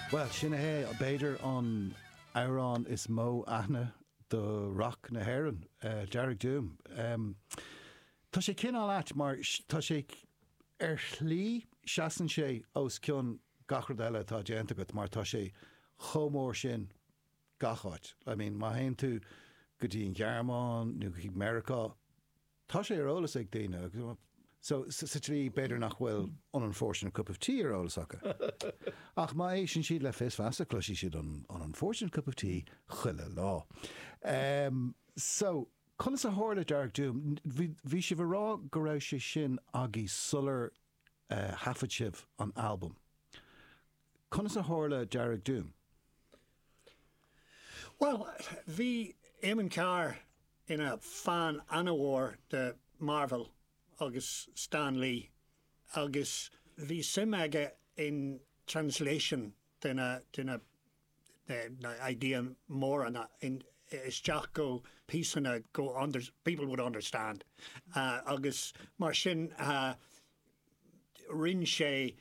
Bhuel, sin é b'fhéidir an amhrán is mó aithne do rac na hÉireann, Dearg Doom. Tá sé cineál ait mar tá sé, ar shlí, seasann sé os cionn gach rud eile atá déanta agat mar tá sé chomh mór sin gach áit. I mean, má théann tú go dtí an Ghearmáin nó go dtí Meiriceá, Tá sé ar eolas ag daoine agus, so, sa tslí, b'fhéidir nach bhfuil an unfortunate cup of tea ar eolas acu. Ach má éisteann siad le Fios Feasa, cloisfidh siad an unfortunate cup of tea chuile lá. Em, so, conas a tharla Dearg Doom? Bhí, bhí sibh ag rá go raibh sé sin agaibh sular thaifead sibh an albam? Conas a tharla Dearg Doom? Bhuel, bhí Éamonn Carr ina fan an-mhór de Marvel agus Stan Lee agus bhí suim aige in translation de na. idea móra isteach go píosanna go people would understand agus mar sin rinn sé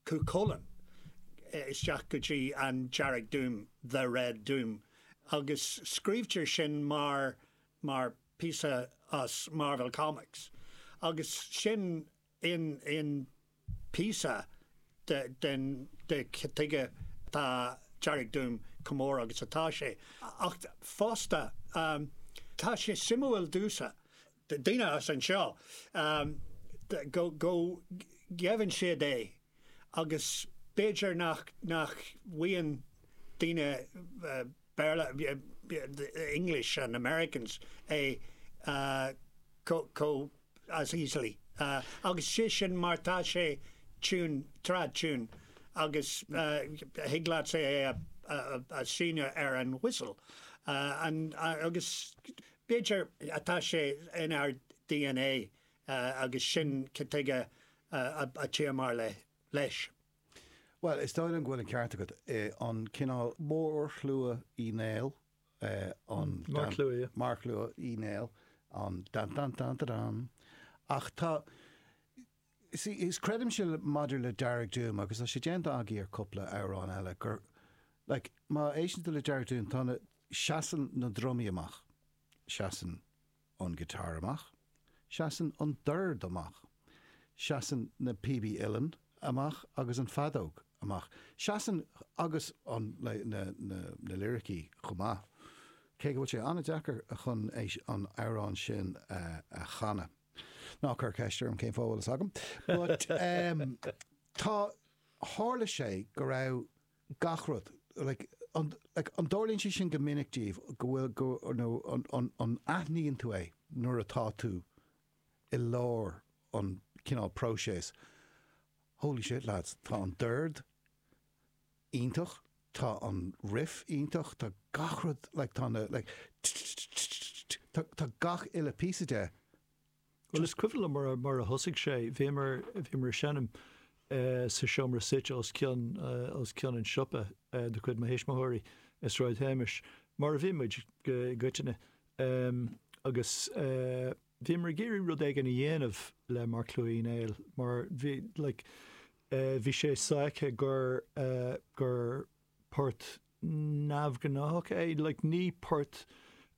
Cú Chulainn isteach go dtí an Dearg Doom, the Red Doom agus scríobhtar sin mar píosa as Marvel Comics agus sin. Sin an píosa de cad tuige tá Dearg Doom chomh mór agus atá sé, ach fosta tá sé suimiúil domhsa, daoine as anseo go gheibheann siad é agus b'fhéidir nach bhfaigheann daoine Béarla, English and Americans, é chomh. as easily agus sé sin mar tá sé tune, trad tune agus thig leatsa é a sheinm ar an whistle agus b'fhéidir tá sé inár DNA agus sin cad tuige a tchíomar leis. Bhuel, is dóigh liom go bhfuil an ceart agat, an cineál mórshlua Uí Néill, an marcshlua Uí Néill, an dan dan dan da dan. Ach tá, see, is creidimse maidir le Dearg Doom, agus tá sé déanta agaibh ar cúpla amhrán eile, gur, like, má éisteann tú le Dearg Doom, tá na, seasann na drumaí amach, seasann, an guitar amach, seasann an dord amach, seasann na píobaí uilleann amach agus an feadóg amach, seasann agus an na liricí chomh maith, cé go bhfuil sé an-deacair chun é an amhrán sin a chanadh. Ná cuir ceist orm cén fáth a bhfuil fhios agam. But, em, tá, tharla sé go raibh. gach rud. Like, an dtarlaíonn sé sin go minic daoibh, go bhfuil, go, you know, an, an, an aithníonn tú é nuair atá tú i lár an cineál próiseas, holy shit lads, tá an dord iontach, tá an riff iontach, tá gach rud, like, tá na, like, tch, tch, tch, tch, tch, tá gach uile píosa de Bhuel, is cuimhin liom mar a thosaigh sé, bhíomar ag seinm sa seomra suite os cionn an tsiopa de chuid mo thuismitheoirí i Sráid Shéamais, mar a bhí muid i gcoitinne, agus bhíomar ag iarraidh rud éigin a dhéanamh le Marcshlua Uí Néill mar bhí sé sáite gur port neamhghnáthach é. Like, ní port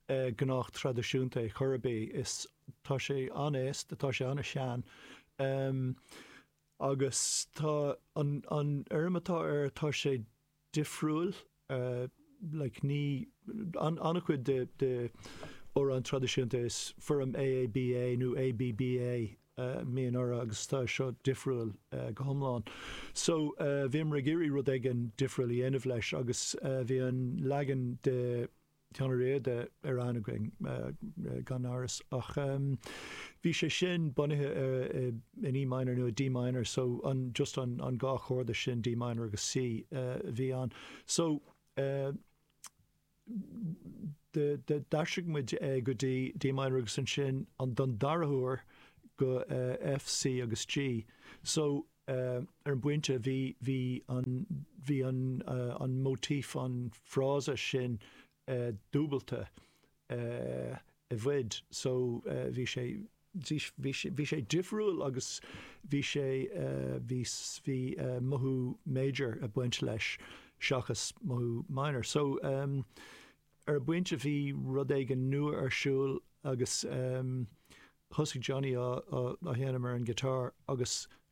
gnách traidisiúnta é chor ar bith. Is, tá sé an-aosta, tá sé an-sean. Agus tá an, an fhoirm atá air, tá sé difriúil. Like, ní, an, an-chuid de, de amhráin traidisiúnta is foirm AABA nó ABBA mbíonn orthu agus tá seo difriúil go hiomlán. So, bhíomar ag iarraidh rud éigin difriúil a dhéanamh leis agus bhí an leagan de Sheán Ó Riada ar aithne againn, gan amhras, ach bhí sé sin bunaithe in E minor nó i D minor, so an, just an, an dhá chorda sin, D minor agus C, a bhí ann. So, D'aistrigh muid é go dtí D minor agus ansin don dara huair go F, C agus G. So, ar an bpointe, bhí, bhí an, bhí an, an motif, an frása sin dúbailte i bhfad. So, bhí sé. Bhí sé difriúil agus bhí sé, bhí, bhí mothú major ag baint leis seachas mothú minor. So, ar an bpointe bhí rud éigin nua ar siúl agus thosaigh Johnny á, á, á sheinm ar an guitar agus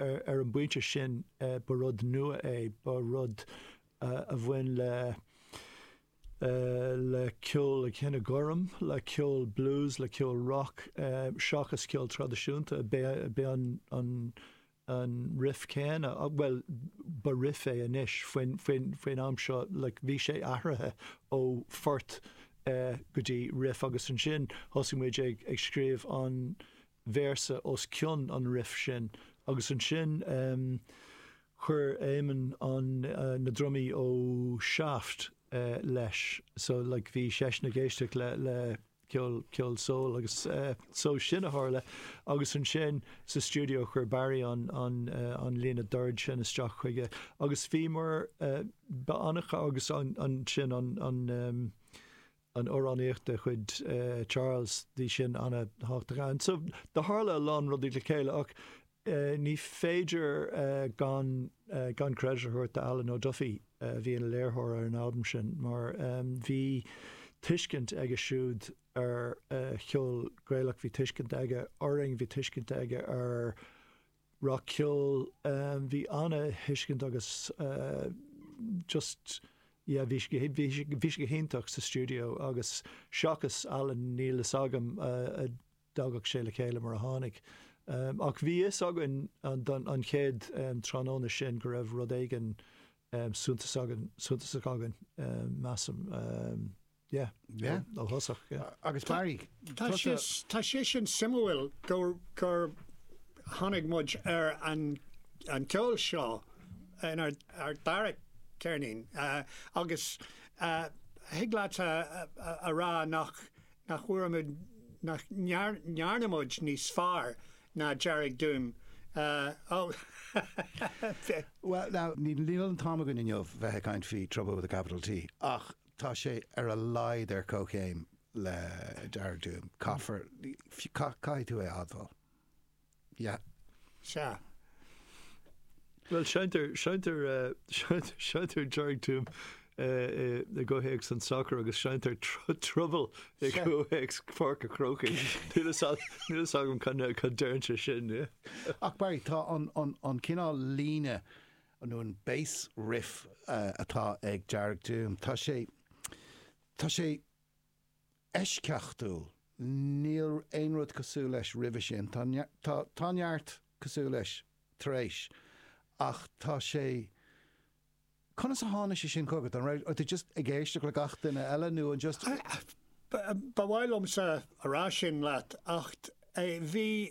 Ar an bpointe sin, ba rud nua é, ba rud a bhain le le ceol an chine ghoirm, le ceol blues, le ceol rock, seachas ceol traidisiúnta. B'é an an an riff céanna, bhuel, ba riff é anois, faoin faoin faoin am seo, like, bhí sé athraithe ó phort go dtí riff agus ansin thosaigh muid ag ag scríobh an véarsa os cionn an riff sin agus ansin chuir Eamon an na drumaí ó Shaft leis so like bhí seisean ag éisteacht le le ceol ceol soul agus so sin a tharla agus ansin sa stiúideo chuir Barry an an an líne doird sin isteach chuige agus bhíomar ba annamh agus ansin an an an amhránaíocht de chuid Charles bhí sin ana-thábhachtach. And so do tharla a lán rudaí le chéile ach ní féidir gan gan credit a thabhairt d'Alan O'Duffy a bhí ina léirtheoir ar an albam sin mar bhí tuiscint aige siúd ar cheol Gaelach, bhí tuiscint aige orainn, bhí tuiscint aige ar rac-cheol. Bhí an-thuiscint agus just yeah bhí sé bhí sé go hiontach sa stiúideo agus seachas Alan níl fhios agam an dtagadh sé le chéile mar a tháinig. Ach bhí fhios againn an don an chéad tráthnóna sin go raibh rud éigin suntasach againn measaim. Yeah, yeah, ó thosach, yeah. Agus Barry, tusa. Tá sé sin suimiúil gur tháinig muid ar an gceol seo in ár dara ceirnín agus thig leat a rá nach bhfuair muid, nach ndearna muid níos fearr ná Dearg Doom. Bhuel, now, níl an t-am againn inniu bheith ag caint faoi Trouble with a capital T, ach Tá sé ar a laghad ar comhchéim le Dearg Doom. Caithfear, caithfidh tú é a admháil. Sea. Sea. Bhuel, seinntear, seinntear, seinntear Dearg Doom i gcomhthéacs an tsacair agus seinntear Trouble i gcomhthéacs Pháirc a' Chrócaigh. Níl fhios agam cad deireann sé sin. Ach Barry, tá an cineál líne. an bass riff atá ag Dearg Doom, tá sé, tá sé eisceachtúil, níl aon rud cosúil leis roimhe sin, tá, tá, tá neart cosúil leis tar éis, ach tá sé, conas a tháinig sé sin chugat, an raibh tú just ag éisteacht le gach duine eile nó an just? Ba mhaith liomsa a rá sin leat ach bhí,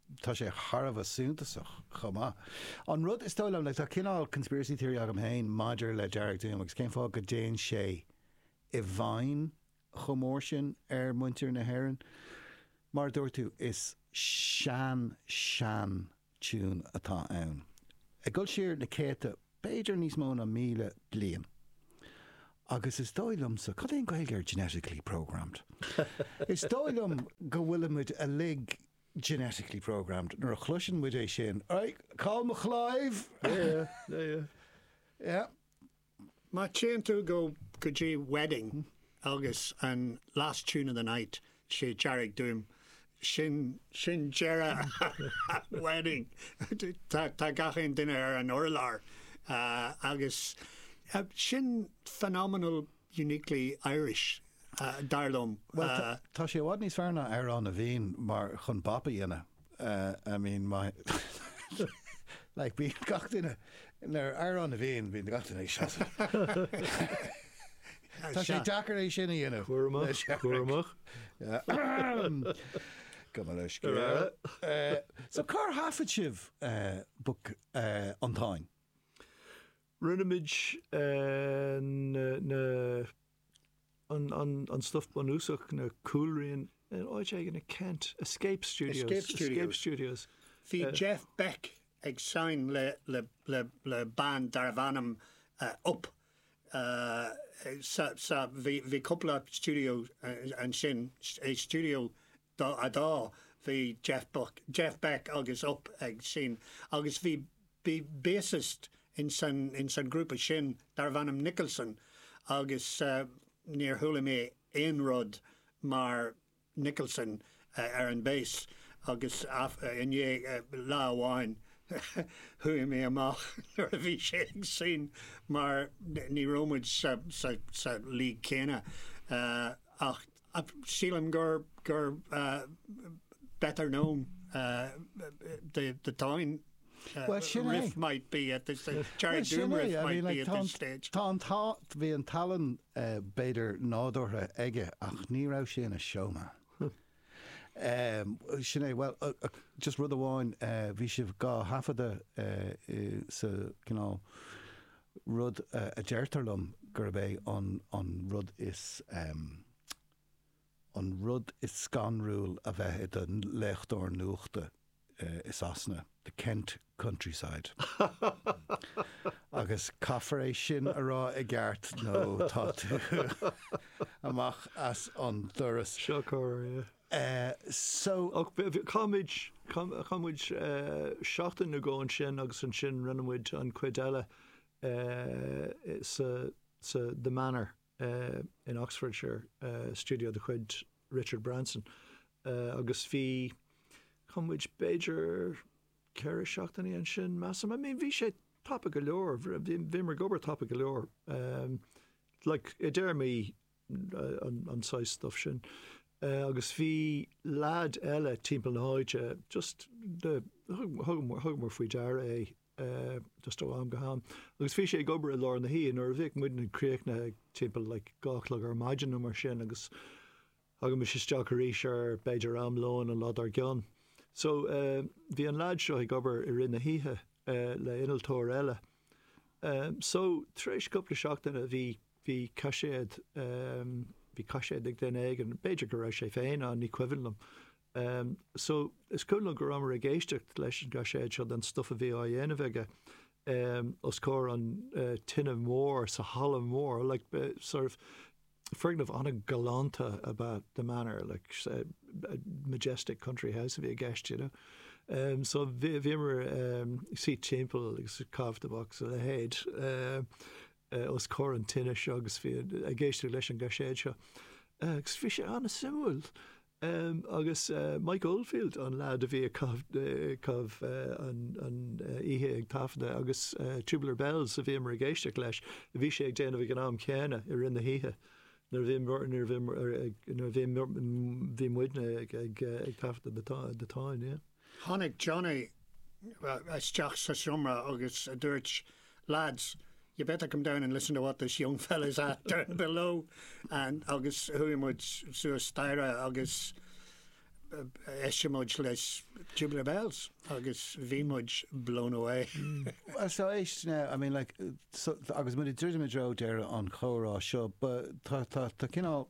tá sé thar a bheith suntasach chomh maith. An rud is dóigh liom, like, tá cineál conspiracy theory agam féin maidir le Dearg Doom agus cén fáth go dtéann sé i bhfeidhm chomh mór sin ar mhuintir na hÉireann. Mar a dúirt tú, is sean, sean tiún atá ann, ag dul siar na céadta, b'fhéidir níos mó ná míle bliain. Agus is dóigh liomsa, cad é an Ghaeilge ar genetically programmed? Is dóigh liom go bhfuilimid uilig genetically programmed, nuair a chloiseann muid é sin, Aye, call me Clive! Yeah, yeah, yeah, yeah. Yeah. Má téann tú go go dtí Wedding agus an last tune of the night is é Dearg Doom, sin sin deireadh Wedding. Tá tá gach aon duine ar an urlár agus sin phenomenal uniquely Irish, dar liom. Bhuel, tá sé i bhfad níos fearr ná Amhrán na bhFiann, mar chun bop a dhéanamh, I mean, like bíonn gach duine, nuair Amhrán na bhFiann, bíonn gach duine ag seasamh. Tá sé deacair é sin a dhéanamh. Cúramach, cúramach. Go mba le scéal. So cár thaifead sibh Book, An Táin? Rinne muid an stuff bunúsach, na cúlrianta, in áit éigin i Kent. Escape Studios. Bhí Jeff Beck ag seinm le band darbh ainm Upp. Bhí cúpla stiúideo ansin, stiúideo Dá fhadá, bhí Jeff Buck, Jeff Beck agus Upp ag seinm agus bhí bassist ins an ghrúpa sin darbh ainm Nicholson agus níor chuala mé aon rud mar Nicholson ar an bass agus i ndiaidh lá amháin chuaigh mé amach nuair a bhí sé ag seinm mar ní raibh muid sa league céanna ach Ach sílim gur gur better known the the Táin riff might be at this stage, Dearg Doom riff might be at this stage. Tá an t-, bhí an tallann b'fhéidir nádúrtha aige ach ní raibh sé ina showman. Sin é, bhuel, just rud amháin, bhí sibh á thaifeadadh sa gcineál rud a deirtear liom gurb é an rud is an rud is scanrúil a bheith i do léitheoir nuachta i Sasana, the Kent countryside. Agus caithfear é sin a rá i gceart nó tá tú amach as an doras. Seo corr, yeah. Eh, so. Ach bhí, bhí, chaith muid, chaith, chaith muid seachtain nó dhó ansin agus ansin rinne muid an chuid eile eh, sa, sa The Manor eh, in Oxfordshire, eh, studio de chuid Richard Branson. Eh, agus bhí, chaith muid b'fhéidir ceithre seachtainí ansin measaim. I mean, bhí sé tapa go leor, bhí, bhí muid ag obair tapa go leor. Eh, like, i dtéarmaí an saghas stuif sin. Agus bhí leaid eile timpeall na háite just thugamar faoi deara é just ó am go ham. Agus bhí sé ag obair i lár na hoíche nuair a bhíodh muidne críochnaithe timpeall like a dó a chlog ar maidin nó mar sin agus thagaimis isteach arís ar b'fhéidir am lóin an lá dár gcionn. So bhí an leaid seo ag obair i rith na le innealtóir eile So, tar éis cúpla seachtaine, bhí, bhí caiséad, bhí caiséad ag duine éigin, b'fhéidir go raibh sé féin ann, ní cuimhin liom. So, is cuimhin liom go rabhamar ag éisteacht leis an gcaiséad seo den stuff a bhí á dhéanamh aige os comhair an tine mór sa halla mór, like, sort of, Foirgneamh an-ghalánta ab ea The Manor, like a majestic country house a bhí i gceist, you know. So bhíomar ag suí timpeall agus ag caitheamh tobac is a leithéid os comhair an tine seo agus bhí ag éisteacht leis an gcaiséad seo agus bhí sé an-suimiúil. Em, agus, eh, Mike Oldfield, an leaid a bhí ag caitheamh, eh, caitheamh, eh, an, an, eh, oíche ag taifeadadh agus, eh, Tubular Bells a bhíomar ag éisteacht leis, a bhí sé ag déanamh ag an am céanna, i rith na hoíche, nuair a bhí, nuair a bhí, nuair a bhí, bhí muidne ag, ag, eh, ag taifeadadh na, na Táin, yeah. Tháinig Johnny isteach sa seomra agus dúirt, Lads, you better come down and listen to what this young fella is at there below and agus chuaigh muid suas staighre agus d'éist muid leis Tubular Bells agus bhí muid blown away. Well, so éist now, I mean like so, agus muid druidim i dtreo deireadh an chomhrá seo, but tá cineál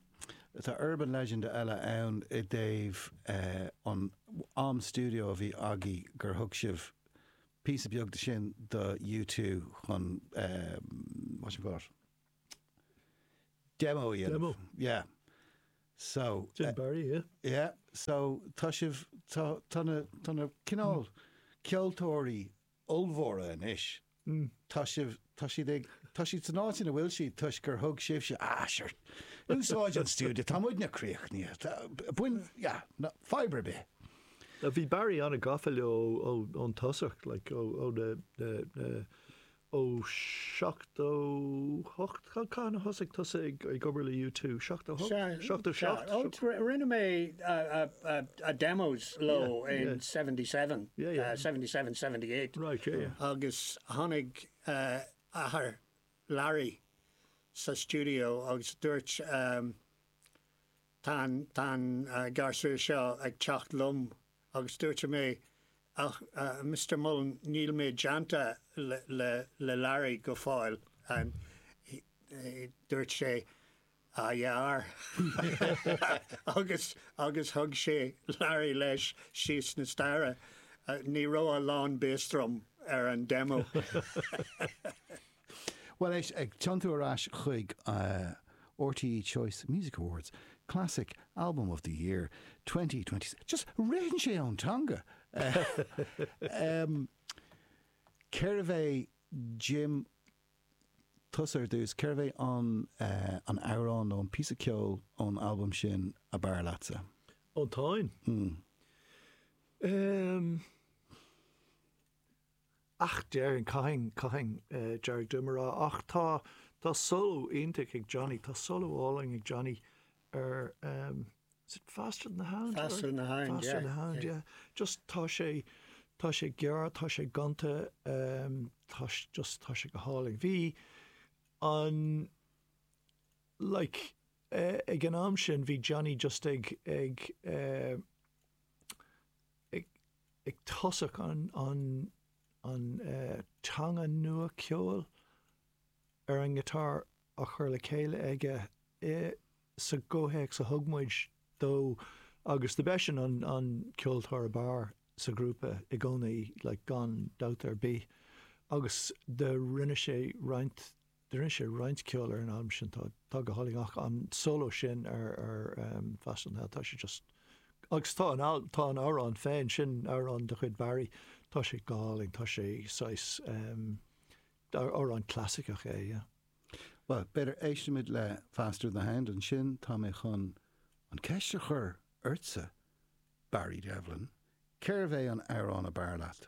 Tá urban legend eile ann i dtaobh an am studio a bhí agaibh gur thug sibh píosa beag de sin do U two chun what you call it demo a dhéanamh. Demo. Yeah. So. Jim Barry, yeah. Yeah. So tá sibh, tá, tá na, tá na cineál ceoltóirí ollmhóra anois Hm, tá sibh, tá siad ag, tá siad san áit ina bhfuil siad toisc gur thug sibhse, ah, sure, úsáid an stiúideo, tá muidne críochnaithe, tá, bain, yeah, no, fadhb ar bith. Now, bhí Barry an-gafa leo ó, ón tosach, like, ó, ó na, na, na, ó 78, Cathain a thosaigh tusa ag obair le U2? Seachtó hocht? Sea, Seachtó sea. seacht? Ó, Seacht- ri- rinne mé a, a, a, a demos leo Yeah, in yeah. 77, Yeah, yeah. uh, 77, 78. Right, yeah, yeah. Agus tháinig uh, athair Larry sa studio agus dúirt, um, Tá an gasúr seo ag teacht liom agus dúirt mé, Ach, a Mhister Mullen, níl mé déanta le Larry go fóill. Dúirt sé, Ah yeah. Agus thug sé Larry leis síos na staighre. Ní raibh a lán bass drum ar an demo. Bhuel, éist, ag tiontú ar ais chuig RTÉ Choice Music Awards, Classic Album of the Year 2020, just ritheann sé ón teanga! Cérbh é Jim, tusa ar dtús, cérbh é an an amhrán nó an píosa ceoil ón albam sin ab fhearr leatsa? Ón Táin? Mm. Um. Ach déarfainn, caithfidh, caithfinn Dearg Doom a rá. Ach tá, tá solo iontach ag Johnny, tá solo álainn ag Johnny ar ehm, is it Faster Than The Hound? Faster Than The Hound, yeah. Faster Than The Hound, yeah. Just tá sé, tá sé gearr, tá sé gonta, ehm, tá, just tá sé go hálainn. Bhí an, like, eh, ag an am sin, bhí Johnny just ag, ag, eh, ag tosach an teanga nua ceoil ar an ngiotár á chur le chéile aige insa gcomhthéacs a thug muid dó agus do b'eisean an ceoltóir ab fhearr sa ghrúpa i gcónaí like gan dabht ar bith agus do rinne sé roinnt do rinne sé roinnt ceoil ar an albam sin atá go hálainn, ach an solo sin ar Faster Than The Hound, tá sé just, agus tá an albam, tá an amhrán féin, sin amhrán de chuid Barry, tá sé go hálainn, tá sé saghas, amhrán clasaiceach é, yeah. Bhuel, b'fhéidir éistfimid le Faster Than The Hound, ansin tá mé chun an ceist a chur ortsa, Barry Devlin, cérbh é an amhrán ab fhearr leat?